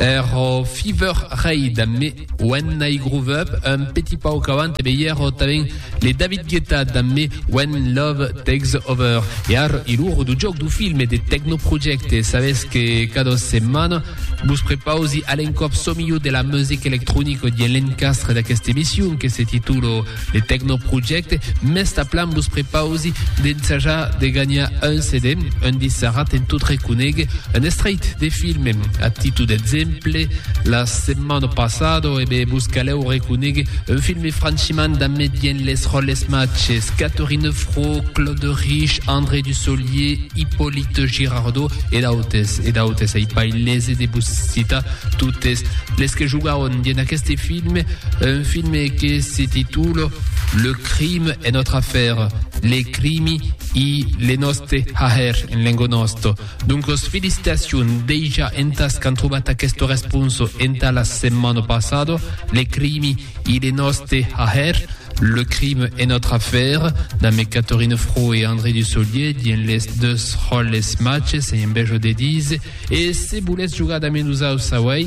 Er Fever Raid amb me When I Groove Up, un petit pauc avant e veièr tanben le David Guetta damb me When Love Takes Over. E ar hilor du jòc du film e de Techno Project e sabètz que cada setmana vos prepausi a l'encòp çò milhor de la music electronica dien l'encastre d'aquesta emission que se titula De Tecnoproject, mès tanplan vos prepausi d'ensajar de ganhar un CD, un disc sarrat en tot reconéguer un estreit de film. A títol d'exemple, la setmana passada e bé vos calèu reconéguer un film franchiment damé dient les ròles matges, Catherine Fro, Claude Riche, André Dussolier, Hyppolite Girardot e d'autes, e d'autes, ai pas lese de vos citar totes les que jogàron dient aqueste film, Un filme que se titula Le crime est notre affaire, les crimi i le noste haher en lengo nosto. Doncos felicitacion deja entas qu'an trobat aquesto responso enta la setmana passada, les crimi i le noste haher, Le crime est notre affaire, damb Catherine Fro e André Dussolier dien les deus ròles matges, ei un bèjo de díser, e se voletz jogar damb nosaus auèi,